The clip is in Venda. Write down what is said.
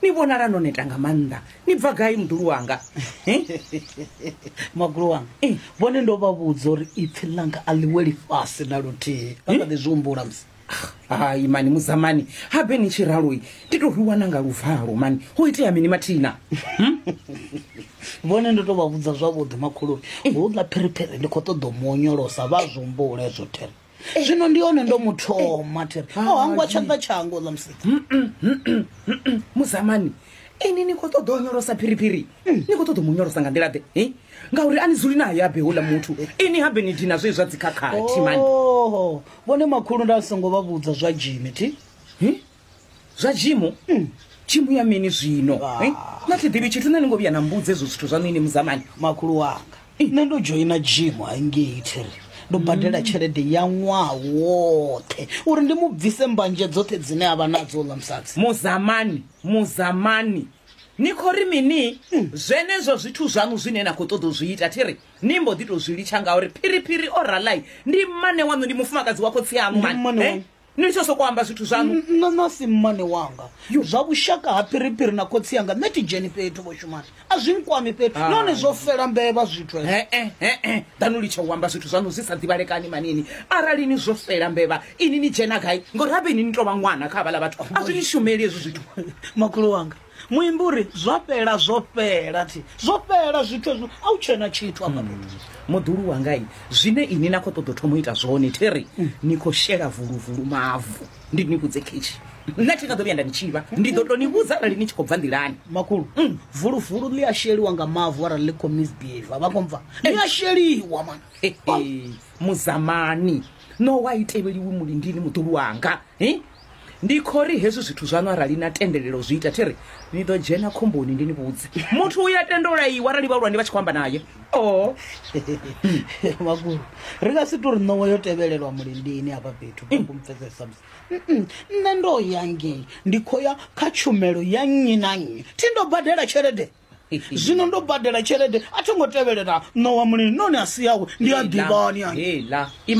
ni vhonala no neta nga maanḓa ni bva gai muḓulu wanga magulo wanga eh. vhone ndo vha vhudza uri ipfhi ḽanga a ḽi weli fhasi na luthihi vha kha ḓi zwi humbula musi ah, hai mani muzamani habe ni tshi raloi ndi to rwiwa na nga luvalo mani ho itea mini mathina hmm? vhone ndo to vha vhudza zwavhuḓi makhuluri eh. ho ḽa phiriphiri ndi khou ṱoḓa u mu onyolosa vha zwi humbula ezwo thera zwino ndi hone ndo muthoma thiri o oh, hangwa tshanḓa tshango ḽa musika muzamani ini ni khou ṱoḓa o nyolosa phiriphiri mm. ni khou ṱoḓa mu nyolosa nga nḓila ḓe ngauri a ni dzuli nayo abe houḽa muthu ini habe ni dina zwe zwa dzikhakhathi mani vhone makhulu nda songo vha vhudza zwa jimi thi zwa jimu mm. jimu ya mini zwino ah. eh? na thi ḓivhi tshithu nṋe ni ngo vhuya na mbudze ezwo zwithu zwa nini muzamani makhulu wanga eh. nṋe ndo dzhoina jimu haingei thiri ndo badela mm. tshelede ya ṅwaha woṱhe uri ndi mu bvise mbanje dzoṱhe dzine a vha nadzo ḽa musadzi muzamani muzamani ni khou ri mini mm. zwenezwo zwithu zwaṋu zwine na khou ṱoḓa u zwi ita thi ri ni mbo ḓi tou zwi litsha ngauri phiriphiri o ralai ndi mmane waṋu ndi mufumakadzi wa khotsi aṋu mane eh? ni litsho soko amba zwithu zwaṋu nṋe nasi mmane wanga zwa vhushaka ha phiriphiri na khotsi yanga nṋe ti dzheni fhethu vho shumani a zwi nkwami fhethu Ah. nahone zwo fela mbevha zwithu hezwo. e-e e-e ḓanu litsha u amba zwithu zwaṋu zwi sa ḓivhalekani manini arali ni zwo fela mbevha ini ni dzhena gai ngori habe ini ni tou vha ṅwana kha havhala vhathu a zwi ni shumeli hezwi zwithu makhulu wanga Muimbi u ri, Zwa fhela, zwo fhela, thi, zwo fhela zwithu hezwo, a hu tshena tshithu hafha hmm. fhethu. Muḓulu wanga i, zwine ini na khou ṱoḓa u thoma u ita zwone, thi ri, hmm. ni khou shela vuluvulu mavu, ndi ni vhudze khetshi. nṋe thi nga ḓo vhuya nda ni tshivha ndi ḓo to ni vhudza arali ni tshi khou bva nḓilani makhulu mm. vuluvulu ḽi a sheliwa nga mavu arali ḽi khou misbehave vha khou bva ḽi a sheliwa man muzamani no wa i tevheliwi mulindini muḓulu wanga Ndi khou ri hezwi zwithu zwaṋu arali na tendelela u zwi ita, thi ri ni ḓo dzhena khomboni. Ndi ni vhudze, muthu u ya tenda u laiwa arali vhahulwane vha tshi khou amba naye. Oh. Makhulu, ri nga si tou ri ṋowa yo tevhelelwa mulindini hafha fhethu vha khou mpfesesa musi. Mm-mm. Nṋe ndo ya ngei, ndi khou ya kha tshumelo ya nnyi na nnyi. Thi ndo badela tshelede. Zwino ndo badela tshelede, a tho ngo tevhelela ṋowa mulini, noni a si yawe, ndi a ḓivhani. Heila.